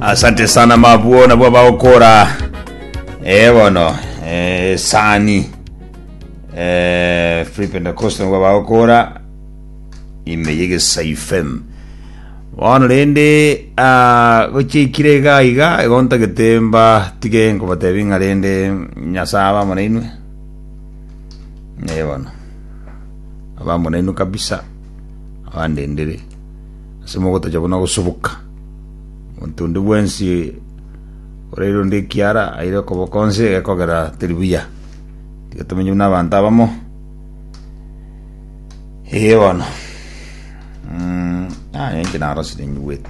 asante sana mabwo nabwo bagokora eh bono eh, sani eh, free pentecost nabwo bagokora ime yegesaifem bono rende ah, gochikire iga iga igonta getemba tige nkobatebi ng'a rende nyasaye abamo nainwe eh bono abamo nainwe kabisa abandendere ase mogotacha buna gosubuka. Monto onde bwensi oraire onde ekiara aire okoboko onsi egekogera teri buya. Tiga tomenye buna abanto abamo. Ee bono. Mm, ah, enki narosire nyigwete.